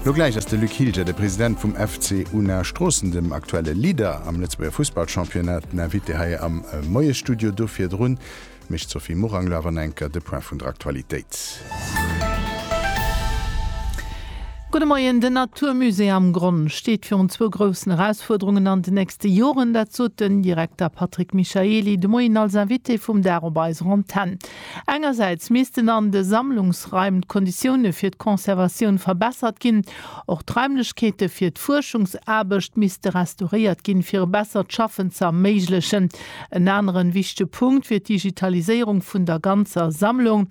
Lo gläich ass de Luc Hilger, de President vum FC Unna Stroossen, dem aktuelle Leader am Lëtzebuerger Fussballchampionnat, den Invité hei am Moiesstudio. Do virdrun mécht d'Sophie Morang lo awer nach enker de Point vun der Aktualitéit. Gudde Moien, Den Natur Musée am Gronn steet virun zwou groussen Erausfuerderungen an den nächste Joren. Dat sot den Direkter Patrick Michaely de Moien als Invité vum Dag op eiser Antenn. Engersäits missten an de Sammlungsraim d'Konditioune fir d'Conservatioun verbessert ginn. Och d'Raimlechkeete fir d'Fuerschungsaarbecht misste restauréiert ginn, fir e bessert Schaffen ze erméiglechen. En anere wichtege Punkt wier d'Digitaliséierung vun der ganzer Sammlung.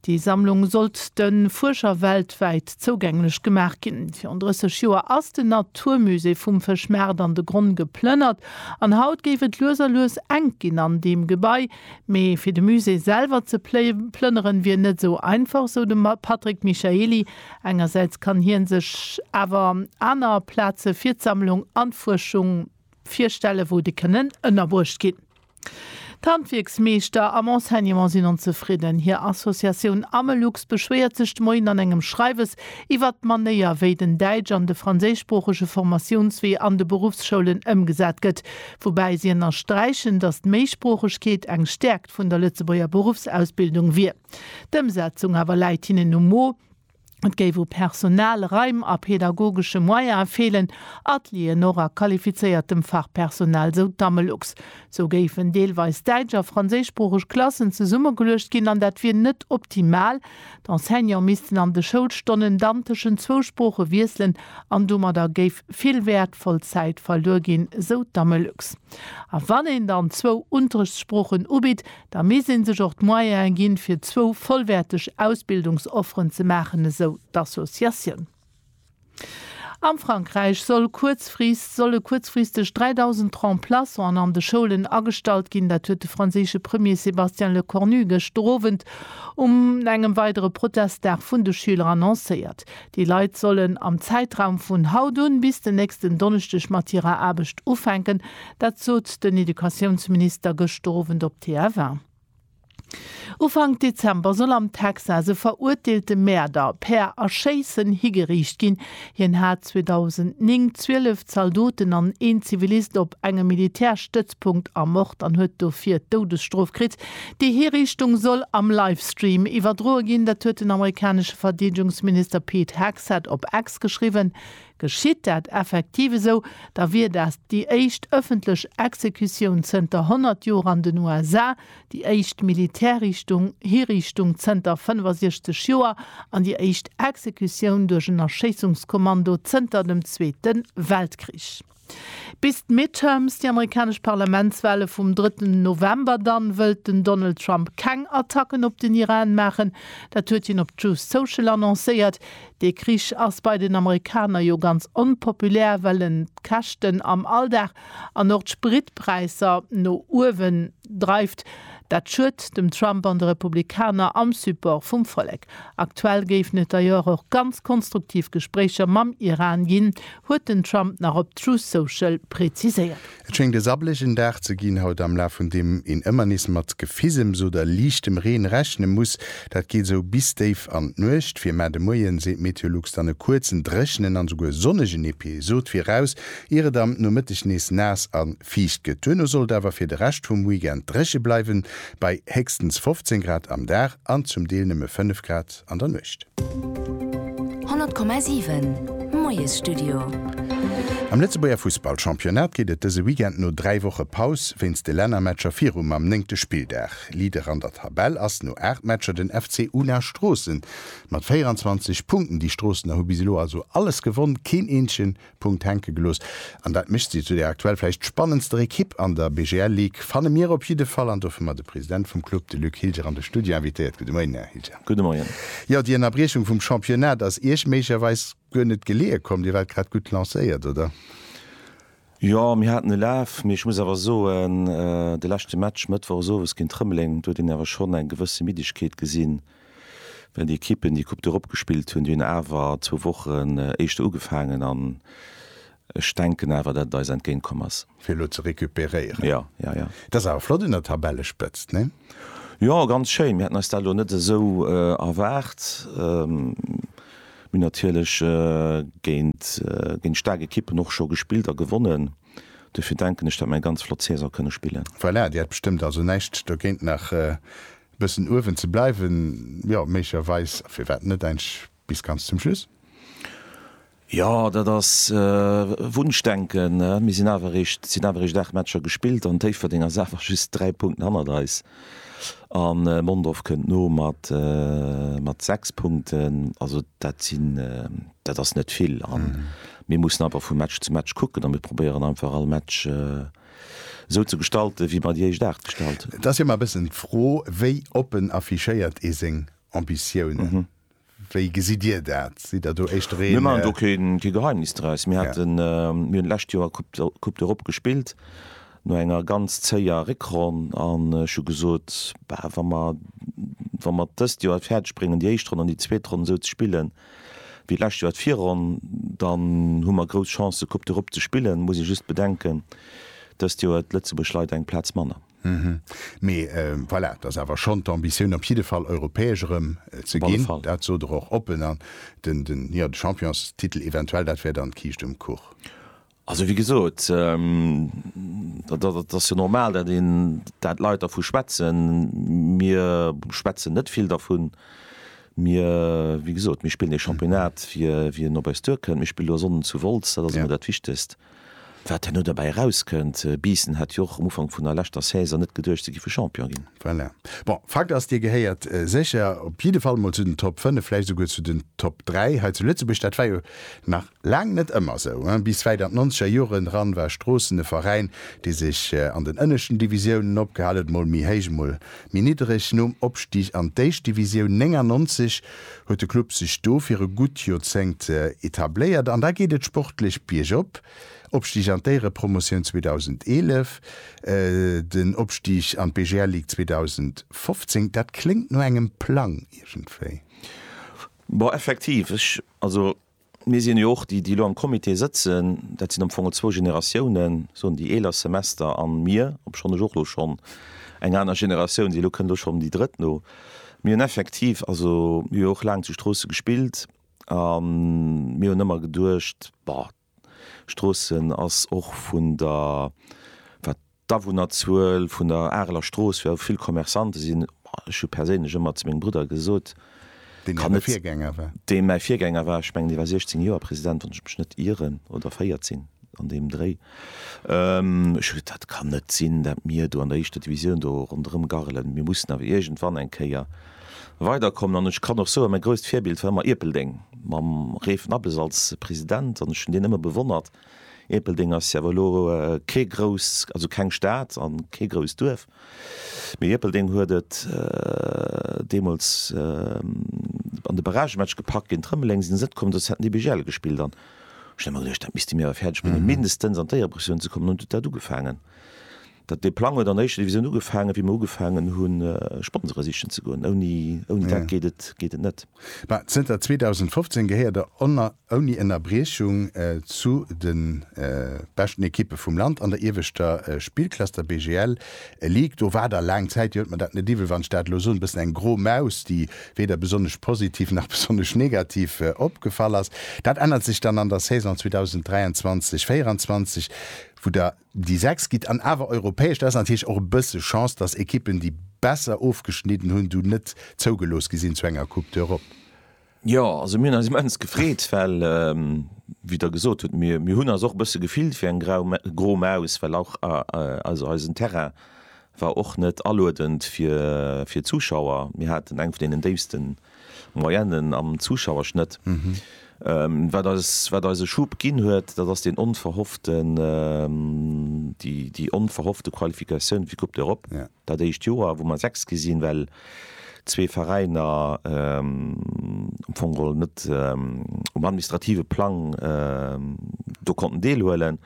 Déi Sammlung sollt de Fuerscher weltwäit zougänglech gemaach ginn. Virun 30 Joer ass den Naturmusée vum Fëschmaart an de Gronn geplënnert an haut géif et lues a lues enk ginn an deem Gebai. Mee fir de Musée selwer ze plënneren, wier net esou einfach, sou de Patrick Michaely. Engersäits kann hie sech awer aner Plaze fir d'Sammlung an d'Fuerschung virstellen, wou déi kënnen ënnerbruecht ginn. D'Handwierksmeeschter am Enseignement sinn onzefridden. Hir Associatioun Amelux beschwéiert sech de Moien an engem Schreiwes iwwert d'Manéier, wéi den däitsch an de franséischsproochege Formatiounswee an de Beruffsschoulen ëmgesat gëtt. Woubäi si ënnersträichen, datt d'Méisproochegkeet eng Stäerkt vun der Lëtzebuerger Beruffsausbildung wier. D'Ëmsetzung awer läit hinnen um Mo. Et géif u Personal, Raim a pedagogesche Moyene feelen, Atelieren och a qualifizéiertem Fachpersonal, esou d'Amelux. Sou géifen deelweis däitsch a franséischsproocheg Klassen zesummegeluecht ginn an dat wier net optimal, D'Enseignant missten an de Schoulstonnen dann tëschent zwou Sprooche wiesselen an domadder géif vill wäertvoll Zäit verluer ginn, sou d'Amelux. A wann een dann zwou Unterrichtssproochen ubitt, da misst ee sech och d'Moyene ginn, fir zwou vollwäerteg Ausbildungsofferen ze maachen, esou d'Associatioun. Am Frankräich soll kuerzfrist, solle kuerzfristeg 3.000 Remplaçanten an de Schoulen agestallt ginn. Dat huet de franséische Premier Sébastien Lecornu gëscht Owend um engem weidere Protestdag vun de Schüler annoncéiert. Déi Leit sollen am Zäitraum vun haut un bis den nächsten Donneschdeg mat hirer Aarbecht ufänken. Dat sot den Educatiounsminister gëscht Owend op TF1. Ufank Dezember soll am Texas e verurteelte Mäerder per Erschéissen higeriicht ginn. Hien hat 2009 zwielef Zaldoten an een Zivilist op engem Militärstëtzpunkt ermort an huet dofir d'Doudesstrof kritt. Déi Hiriichtung soll am Livestream iwwerdroe ginn. Dat huet den amerikanesche Verdeedegungsminister Pete Hegseth op X geschriwwen. Geschitt dat effektiv esou, da wier dat déi éischt ëffentlech Exekutioun zënter 100 Joer an den USA, déi éischt Militärriichtung, Hiriichtung, zënter 65 Joer an déi éischt Exekutioun duerch en Erschéissungskommando zënter dem Zweete Weltkrich. Bis d'Midterms, déi amerikanesch Parlamentswale vum drëtten November dann, wëllt den Donald Trump keng Attacken op den Iran maachen. Dat huet hien op Truth Social annoncéiert. Dee Krich ass bei den Amerikaner jo ganz onpopulär, well en d'Käschten am Alldag an och d'Spritpräisser no uewen dreift. Dat schued dem Trump an de Republikaner am Support vum Vollek. Aktuell géifen et d'ailleurs och ganz konstruktiv Gespréicher mam Iran ginn, huet den Trump nach op Truth Social präziséiert. Et schéngt e sabblegen Dag ze ginn haut, am Laf vun deem een ëmmer nees mat Gefisems oder liichtem Reen rechne muss. Dat geet esou bis déif an d'Nuecht. Fir mar de Moien seet Meteolux dann e kuerzen, dréchenen an esouguer sonnegen Episod viraus, ier et am Nomëtteg nees naass a fiicht gëtt. Duerno soll et awer fir de Rescht vum Weekend dréche bleiwen, bei héchstens 15 Grad am Dag an zum Deel nëmme 5 Grad. an der Nuecht. 100,7 Moiesstudio. Am Lëtzebuerger Fussballchampionnat geet et dëse Weekend no 3 Woche Paus wéinst de Lännermatcher viru mam néngte Spilldag. Leader an der Tabell ass no 8 Matcher den FC Una Stroossen mat 24 Punkten. Déi Stroossener hu bis elo also alles gewonn, keen eenzegen Punkt hänke gelooss an dat mécht si zu der aktuell vläicht spannendster Ekipp an der BGL Ligue, fanne mir op jidde Fall an dofir mer de President vum Club, de Luc Hilger, an de Studio invitéiert. Gudde Moien, Här Hilger. Gudde Moien. Jo, déi Ënnerbriechung vum Championnat ass Iech méiglecherweis guer net geleeë komm, Dir waart grad gutt lancéiert, oder? Jo, mir haten e Laf, mee ech muss awer soen, de leschte Match mëttwochesowes géint Rëmeleng, do huet een awer schonn eng gewësse Middegkeet gesinn, Well déi Ekippen déi Coupe d'Europe gespillt hunn, déi hunn awer zwou Wochen éischter ugefaangen an ech denken awer, datt et eis entgéint komm ass. Fir elo ze recuperéieren. Jo, jo, jo. Et ass awer flott un der Tabellespëtzt, nee? Jo, ganz schéin. Mir haten eis dat elo net esou erwaart. Mir hunn natierlech géint staark Ekippen och scho gespillt a gewonnen. Dofir denken ech, datt mir eng ganz flott Saison kënne spillen. Voilà, Dir hätt bestëmmt also näischt dogéint nach Bëssen uewen ze bleiwen, jo, méiglecherweis. Firwat net eigentlech bis ganz zum Schluss? Jo, dat ass Wunschdenken. Mir sinn awer eréischt, sinn awer eréischt 8 Matcher gespillt an Déifferdeng ass awer just 3 Punkten hannert eis an Mondorf kënnt no mat mat 6 Punkten. Also dat sinn, dat ass net vill an mir mussen einfach vu Match zu Match kucken an mir probéieren einfach all Match esou ze gestalten, wéi mer déi éischt Aart gestalt hunn. Et ass jo ëmmer e bëssen d'Fro, wéi oppen affichéiert ee seng Ambitiounen? Wéi gesitt Dir dat? Sidd Der do éischter een. Mir maachen do kee Geheimnis draus. Mir haten, mir hunn d'lescht Joer Coupe d'Europe gespillt, no enger ganz zéier Réckronn. An ech hu gesot, Bah, wa mer, wa mer d'ëst Joer et fäerdeg bréngen, déi éischt Ronn an déi zweet Ronn esou ze spillen, Wéi d'lescht Joer d'Virronn, dann hu mer grouss Chancë Coupe d'Europe ze spillen. Muss ee just bedenken, dëst Joer huet d'Lëtzebuerg leider eng Plaz manner. Hm, mee voilà, et ass awer schonn d'Ambitioun op jidde Fall Europäesch erëm ze ginn, dat sot Der och oppen. An de Championstitel eventuell, dat wär dann d'Kiischt um Kuch? Also wéi gesot, dat ass jo normal, dat een, dat d'Leit dervu schwätzen. Mir schwätzen net vill dervun. Mir, wéi gesot, mir spillen ee Championnat, fir wien op eis duerkënnt. Mir spillen elo Sonnden zu Wolz, dat ass emol dat Wichtegst. Wat herno derbäi erauskënnt, Biissen hat jo och um Ufank vun der leschter Saison net geduecht, se géife Champion ginn. Voilà. Bon, Fakt ass, Dir gehéiert sécher op jidde Fall emol zu den Top 5, vläicht esouguer zu den Top 3 hei zu Lëtzebuerg. Dat war jo nach Laang net ëmmer esou, ë. Bis wäit an d'nonzeger Joren eran war Stroossen e Veräin, dee sech an den ënneschten Divisiounen opgehal huet, mol méi héich, mol méi niddereg. Nom Opstig an d'éischt Divisioun 99 huet de Club sech do fir e gutt Joerzéngt etabléiert an da geet et sportlech biergop. Opstig an d'Éierepromotioun 2011, den Opstig an d'BGL Ligue 2015, dat kléngt no engem Plang iergendwéi. Bon, effektiv, ech, also. Mir sinn jo och, déi déi elo am Comité sëtzen, dat sinn am Fong zwou Generatiounen, soen déi eeler Semester a mir, obschonn ech och elo schonn eng aner Generatioun sinn, elo kënnt elo schonn déi drëtt no, mir hunn effektiv, also mir hu jo och laang zu Stroosse gespillt a mir hunn ëmmer geduecht, bah, Stroossen ass och vun der, wat. D'Awunnerzuel vun der Areler Strooss, wou vill Commerçante sinn, ech hu perséinlech ëmmer zu mengem Brudder gesot, Deen äre Virgänger war. Deen mäi Virgänger war. Ech mengen, dee war 16 Joer President, wann ech mech net ieren, oder 14, an deem Dréi. Ech hu gesot, dat kann net sinn, dat mir do an der éischter Divisioun do ronderëm garrelen. Mir mussen awer iergendwann eng Kéier weiderkommen. An ech kann och soen, mäi grousst Virbild war ëmmer Ierpeldeng, mam Ray Vnabes als President. An ech hunn deen ëmmer bewonnert. Ierpeldeng ass awer elo kee grousst, also keng Stad an kee grousst Duerf, mee Ierpeldeng huet et deemools an de Barragematch gepackt géint Rëmeleng, sinn se net komm, dës hätten DBGL gespillt an ech hunn emmer geduecht, dat misste mir awer fäerdeg bréngen, mindestens an d'Éierepressounen ze kommen an huet dat ugefaangen. Dee Plang huet an der éischter Divisioun ugefaangen, wéi mer ugefaangen hu Sponsore sichen ze goen. Ouni dat geet et net. Mä zënter 2015 gehéiert Der ouni Ënnerbriechung zu de beschten Ekippe vum Land an der ieweschter Spillklass, der BGL Ligue. Do war Der laang Zäit, Dir huet mer dat net iwwel, wann ech dat elo soen, e bëssen eng gro Maus, déi weder besonnesch positiv nach besonnesch negativ opgefall ass. Dat ännert sech dann an der Saison 2023, 24, wou Der Déi 6 gitt an awer europäesch. Dat ass natierlech och e bësse Chance, datt Ekippen, déi besser ofgeschnidden hunn, du net zougelooss gi sinn zu enger Coupe d'Europe. Jo, also mir hunn eis immens gefreet, well, wéi Der gesot hutt, mir hunn eis och e bësse gefillt wéi eng gro Maus, well och, also eisen Terrain War och net aluedend fir fir Zuschauer. Mir haten eng vun deenen déifste Moyenne'n am Zuschauerschnëtt. Wat eis wat eis e Schub ginn huet, dat ass deen onverhofften déi déi onverhoffte Qualifikatioun fir d'Coupe d'Europe dat éischt Joer, wou mer Sechst gi sinn, well zwee Veräiner am Fong geholl net um administrative Plang do konnten deelhuelen.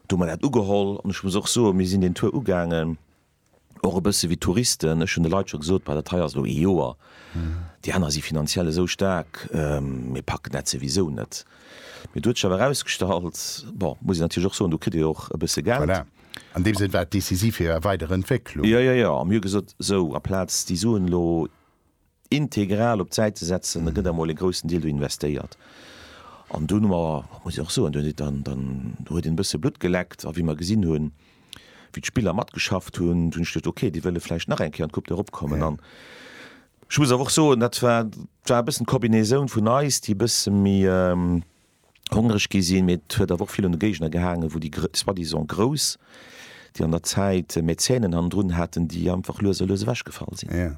do mer dat ugeholl an ech muss och soen, mir sinn deen Tour ugaangen och e bësse wéi Touristen. Ech hunn de Leit scho gesot, Bei dat hei ass elo ee Joer, déi aner si finanziell esou staark, mir packen dat souwisou net. Mee do huet sech awer erausgestallt, bon, muss een natierlech och soen, do kritt ee jo och e bësse Geld. Voilà, an deem Sënn war et decisiv fir är weider Entwécklung. Jo, jo, jo, a mir hu gesot, esou, aplaz déi Suen elo. integral op d'Säit ze setzen, da gëtt emol e groussen Deel do investéiert. An do hu mer, muss ech och soen, do huet een e bësse Blutt geleckt. A wéi mer gesinn hunn, wéi d'Spiller matgeschafft hunn, hunn ech geduecht, okay, déi wëlle vläicht nach eng Kéier an d'Coupe d'Europe kommen. An ech muss awer och soen, dat war e bëssen d'Kombinatioun vun eis, déi e bësse méi, hongreg gi sinn, mee et huet awer och vill un de Géigner gehaangen, wou déi soi-disant Grouss, déi an der Zäit Mäzenen hannendrun haten, déi einfach lues a lues ewechgefall sinn. Jo,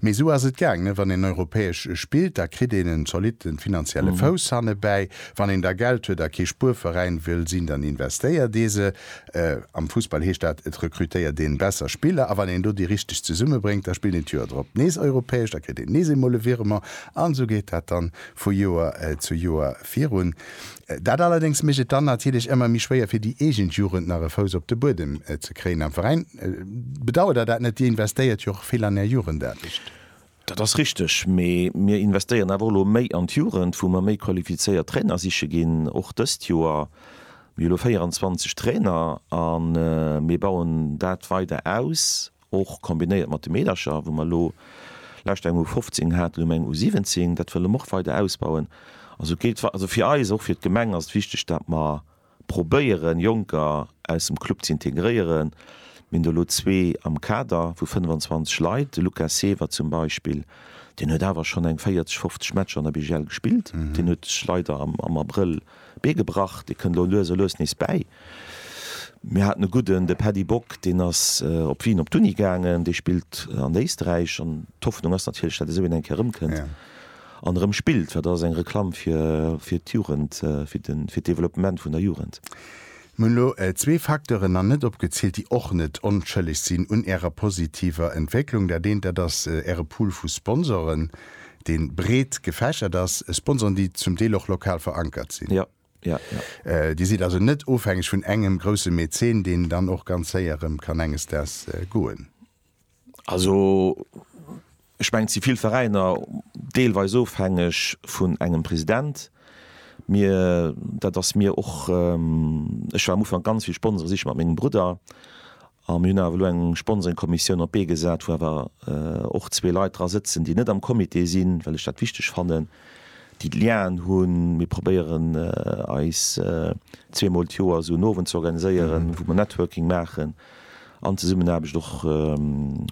mee esou ass et gaangen, wann een europäesch spillt, da kritt een en zolitte finanzielle Fouss hannebäi. Wann een da Geld huet a kee Spuerveräin wëll sinn, dann investéiert ee se. Am Fussball heescht dat, et rekrutéiert een besser Spiller. A wann een do déi richteg zesummebréngt, da spillt een d'Joer drop nees europäesch, da kritt een nees eemol e Virement an esou geet dat dann vu Joer zu Joer virun. Dat allerdéngs mécht et dann natierlech ëmmer méi schwéier fir déi eegen Jugend nach e Fouss op de Buedem ze kréien am Veräin. Bedauert der dat net? Dir investéiert jo och vill an är Jugendaarbecht. Dat ass richteg, mee mir investéieren awer och elo méi an d'Jugend, wou mer méi qualifizéiert Trainer siche ginn, och dëst Joer. Mir hu elo 24 Trainer a mir bauen dat weider aus. Och kombinéiert mat de Meedercher, wou mer elo lescht eng U15 haten, elo hu mer eng U17, dat wëlle mer och weider ausbauen. Also géillt, also fir eis, och fir d'Gemeng ass et wichteg, datt mer probéieren, Jonker aus dem Club ze integréieren. Mir hunn do elo zwee am Kader vu 25 Leit, de Luca Seewer zum Beispill, deen huet awer schonn eng 40, 50 Matcher an der BGL gespillt, deen huet sech leider am Abrëll Bee gebrach, dee kënnt elo lues a lues nees bäi. Mir haten e gudden, de Paddy Bock, deen ass op Wien op d'Uni gaangen, dee spillt an Éisträich an d'Hoffnung ass natierlech, datt esou een eng Kéier erëmkënnt an erëm spillt, well dat ass eng Reklamm fir d'Jugend, fir d'Developpement vun der Jugend. Mir hunn elo zwee Facteuren nach net opgezielt, déi och net onschëlleg sinn un Ärer positiver Entwécklung. Dat eent, dat ass Äre Pool vu Sponsoren, dee breet gefächert ass, Sponsoren, déi zum Deel och lokal verankert sinn. Dir sidd also net ofhängeg vun engem grousse Mäzen, deen dann och ganz séier erëm kann enges Daags goen. Also ech mengen, et si vill Veräiner deelweis ofhängeg vun engem President. Mir, dat ass mir och, ech war am Ufank ganz vill Sponsore siche mat mengem Brudder a mir hunn awer elo eng Sponsoringkommissioun op d'Bee gesat, wou awer och zwee Leit dra sëtzen, déi net am Comité sinn, well ech dat wichteg fannen, déi d'Lienen hunn. Mir probéieren eis zweemol d'Joer esou en Owend ze organiséieren, wou mer Networking maachen. an Zesummenaarbecht och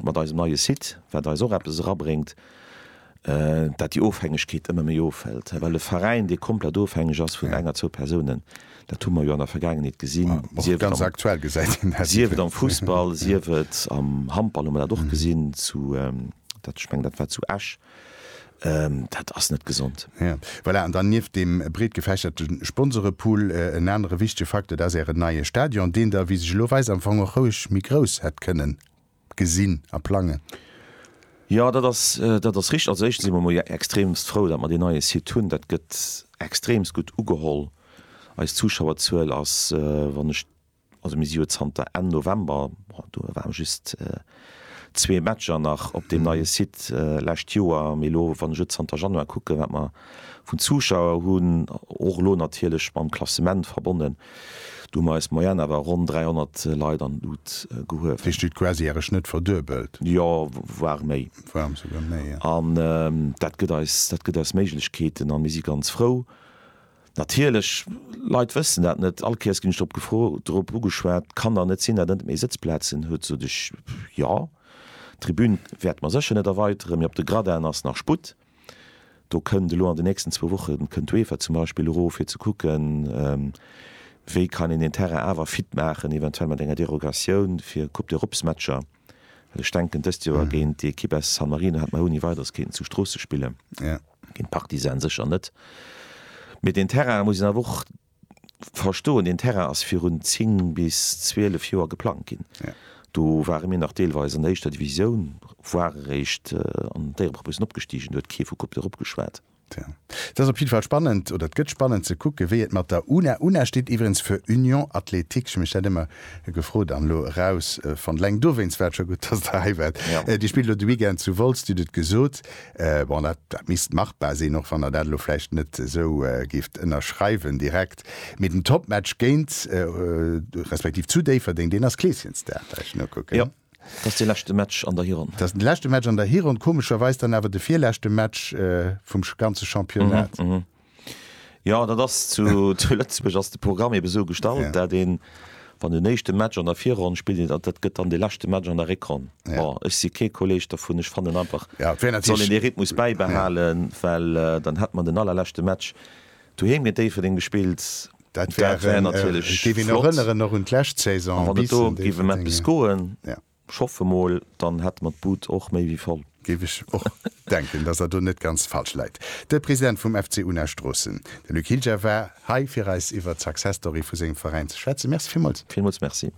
mat eisem neie Site, wat eis och eppes erabréngt, dat déi Ofhängegkeet ëmmer méi ofhëlt, well e Veräin, dee komplett ofhängeg ass vun eng a zwou Persounen, dat hu mer jo an der Vergaangenheet gesinn, sief et am Fussball, sief et am Handball hu mer dat och gesinn, ech mengen, dat war zu Esch. Dat ass net gesond. Ja, voilà. An dann nieft deem breet gefächerte Sponsorepool, en anere wichtege Facteur, dat ass Ären neie Stadion, deen Der, wéi sech elo weist, am Fong och roueg méi grouss hätt kënnen gesinn a plangen. Jo, dat ass, dat ass richteg. Also éischtens si mer emol jo extremst frou, datt mer deen neie Site hunn. Dat gëtt extremst gutt ugeholl. Eis Zuschauerzuel ass, wann ech. Also mir si jo zanter Enn November, do waren just zwee Matcher nach op deem neie Site d'lescht Joer, mee elo wann ech et zanter Januar kucken, wat mer vun Zuschauer hunn, och elo natierlech mam Klassement verbonnen, do hu mer eis Moyenne awer ronn 300 Leit an d'Lut gehuewen. Dir stut quasi Äre Schnëtt verduebelt? Jo, voire méi. Voire souguer méi, jo. An dat gëtt eis, dat gëtt eis Méiglechkeeten a mir si ganz frou. Natierlech, Leit wëssen dat net. All Kéiers ginn ech drop gefro, drop ugeschwat, Kann der net sinn, datt en net méi Sëtzplazen huet? Sot ech, Jo, d'Tribün wäerte mer sécher net erweiteren, mee op de Gradinen ass nach Sputt. Do kënnt elo an de nächsten zwou Woche kënnt d'UEFA zum Beispill erof, fir ze kucken, wéi kann een deen Terrain awer fit maachen, eventuell mat enger Derogatioun fir Coupe d'Europesmatcher. Well ech denken, dëst Joer géint déi Ekipp aus San Marino hätt mer ouni Weideres kéinten zu Stroossen spillen, géint Partizan sécher net. Mee deen Terrain, dat muss een awer och verstoen, deen Terrain ass virun 10 bis 12 Joer geplangt ginn. Do ware mir nach deelweis an der éischter Divisioun, voire eréischt an d'Éiereprop. Mir sinn opgestigen, do huet kee vu Coupe d'Europe geschwat. Tja, et ass op jidde Fall spannend, oder et gëtt spannend ze kucken, wéi et mat der una, una steet iwwregens fir Union Athlétique, ech hu mech dat ëmmer gefrot an elo erausfonnt, eleng dowéinst war et scho gutt, dass Der hei waart, déi spillt elo de Weekend zu Wolz, Dir hutt et gesot, bon, dat, dat misst machbar sinn, och wann Der dat elo vläicht net esou géift ënnerschreiwen direkt, mee den Topmatch géint, respektiv zu Déifferdeng, deen ass Kleeschenstad, well ech nokucken. Dat ass de leschte Match an der Hironn. Dat ass de leschte Match an der Hironn, komescherweis dann awer de virleschte Match vum ganze Championnat. Jo, dat ass zu Lëtzebuerg ass de Programm ebe sou gestallt, dat een, wann den éischte Match an der Virronn spillt een, dat gëtt dann de leschte Match an der Réckronn. Bon, ech si kee Kolleg dovun, ech fannen einfach, et soll een dee Rhythmus bäibehalen, well dann hätt mer den allerleschte Match. Doheem géint Déifferdeng gespillt. Dat wär natierlech flott. A wann et do géif ëm eppes goen, ech hoffe emol, dann hätte mer d'Bud och méi wéi voll. Géif ech och denken, dass Der do net ganz falsch läit. De President vum FC Unna Stroossen, de Luc Hilger, war hei fir eis iwwer d'Success Story vu sengem Veräin ze schwätzen. Merci villmools. Villmools Merci.